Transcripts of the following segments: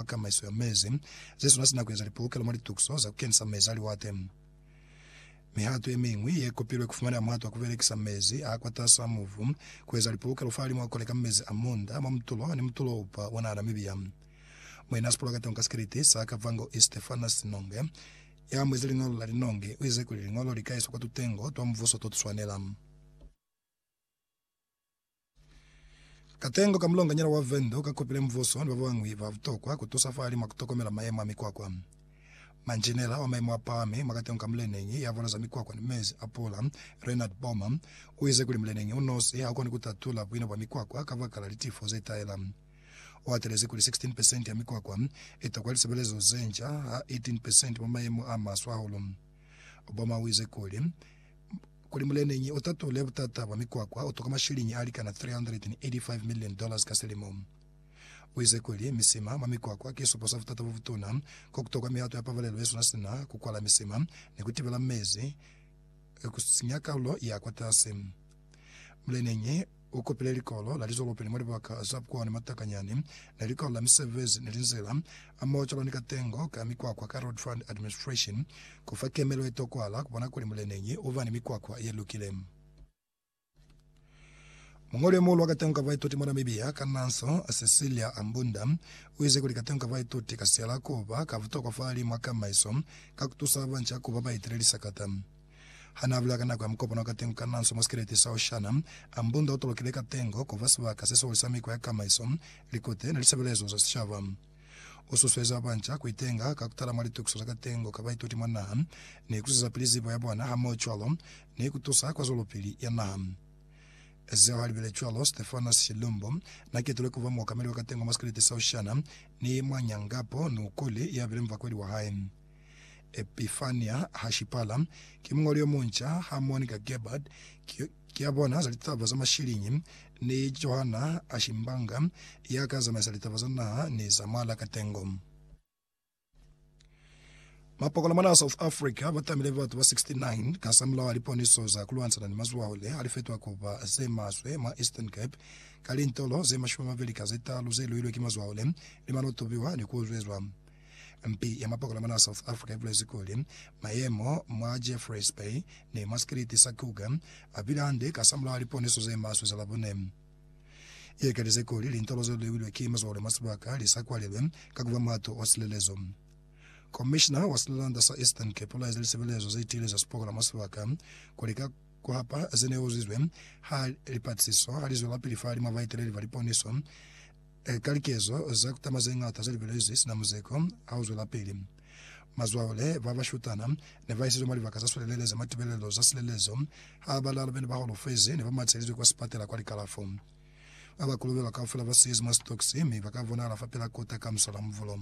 kwa kamaiso ya mezi, zesuna sina kueza lipolokelo mwa litukiso za kukenisa mezi a liwate. Mihato yemiñwi yekopilwe kufumaneha muhato wa kubelekisa mezi a kwatas'a mubu, kueza lipolokelo fahalimu a koleka mezi a munda mwa mutulo ni mutulo upa ona Namibia. Muena sipolakatongo ka sikeliti sa Kavango East Stephanus Nonge, ya muezi liñolo la Linongi, uize kuli liñolo likaezwa kwa tutengo twa mubuso totuswanela. Katengo ka mulonganyana wa Venda o ka kopile mubuso ni babañwi ba butokwa ku tusa fahali mwa ku tokomela mayemo a mikwakwa. Manjinela wa mayemo a pahami mwa katengo ka muleneñi ya voloza mikwakwa ni mezi a pula, Reinhard Böhmer, u ize kuli muleneñi u nosi ha u koni ku tatula buina bwa mikwakwa kabakala litifo ze tahela. U hatelezi kuli 16 pesenti ya mikwakwa i tokwa lisebelezo ze nca ha 18 pesenti mwa mayemo a maswe hahulu. Böhmer u ize kuli, Kuli muleneñi u tatule butata bwa mikwakwa, u toka mashiliñi a likana 385 million dollars ka selimo. U ize kuli, Misima mwa mikwakwa ki supo sa butata bo butuna, ko ku tokwa mihato ya pabalelo ye sina sina ku kwala misima ni ku tibela mezi ku sinya kalulo ya kwatasi. Muleneñi, U kopile likolo la lizolopeni mwa libaka za bukwa ni matakanyani, ni likolo la misebezi ni linzila, hamoho cwalo ni katengo ka mikwakwa ka Road Fund Administration, ku fa kemelo ye tokwahala ku bona kuli muleneñi u ba ni mikwakwa ye lukile. Muñoli yo muhulu wa katengo ka baituti mwa Namibia ka Nanso, Cecilia Ambunda, u ize kuli katengo ka baituti ka siyala ku ba ka butokwa fa hali mwa kamaiso ka ku tusa banca ku ba baitele lisakata. Ha n'a bula ka nako ya mukopano wa katengo ka Nanso mwa sikeleti sa Oshana, a mbunda o tolokile katengo ku fa sibaka se sihulu sa mikwa ya kamaiso, likute, ni lisebelezo za sicaba. U susueza banca ku itenga ka ku tala mwa litukiso za katengo ka baituti mwa naha, ni ku zwezapili zibo ya bona hamohocwalo ni ku tusa kwa zwelopili ya naha. Zeo ha li bile cwalo, Stefanos Shilumbo n'a ketulwe ku ba muokameli wa katengo mwa sikeleti sa Oshana ni mwa nyangapo Nukuli ya bile mubakweli wa hae. Epifania Hashipala, ki muñoli yo munca, ha Monika Gerbert, ki, ki ya bona za litaba za mashiliñi, ni Johanna Ashimbanga, ya ka zamaisa litaba za naha ni za mwa lakatengo. Mapokola mwanaa South Africa ba tamile batu ba 69 kasamulaho a liponiso za ku lwanisana ni mazwaho le ha li fetwa ku ba ze maswe mwa Eastern Cape ka lintolo ze mashumi a mabeli ka ze talu ze luilwe ki mazwaho le li mano tubiwa ni ku uzwezwa. Mpi ya mapokola mwa South Africa ibulezi kuli, Mayemo mwa Jeffreys Bay ni mwa sikiliti sa Kruger abile hande kasamulaho liponiso zemaswe za Labone. Iekelize kuli lintolo zelulewilwe ki mazwale mwa sibaka lisakwalelwe ka kuba muhato wa silelezo. Komishina wa silelanda sa Eastern Cape ulaeze lisebelezo zetiile za sipokola mwa sibaka kuli ka kuhapa zeneuzizwe ha lipatisiso halizwelapili fahalimwa baeteleli ba liponiso, Eka likezo za kutama zeñata zelibelezwi sina muzeko ha uzwelapili, mazwaole babashutana nebaisizwe mwa libaka zaswelelele za matibelelo za silelezo ha balalu bene baholofezi nebamatshelizwe kwa sipatela kwa likalafo. Baba kolobelwa kaufela basiizi mwa sitokisi mi baka bonahala fapil'a kota ka musala muvulo.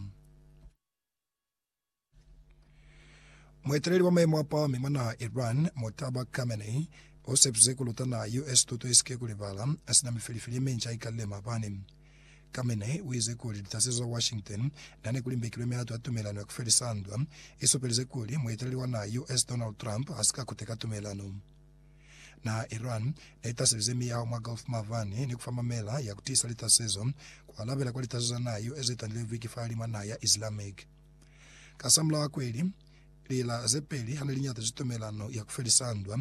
Mueteleli wa maimo a pahami mwa naha Iran, Mojtaba Khamenei, u sepize ku luta naha US tuto i si ke ku libala, sina mifeli-feli ye minca i kalile maabani. Khamenei u ize kuli litasezo za Washington na ne ku limbekilwe mihato ya tumelano ya ku felisa ndwa, i supelize kuli mueteleli wa naha US Donald Trump ha si ka kuteka tumelano. Naha Iran neitaseleze miyaho mwa Gulf mabani ni kufa mamela ya kutiisa litasezo, kualabela kwa litasezo za naha yeo zetandilezwi ki fahalimwa naha ya Islamic. Kasamulaho a kweli, lila zepeli hane liñatezwi tumelano ya kufelisa ndwa,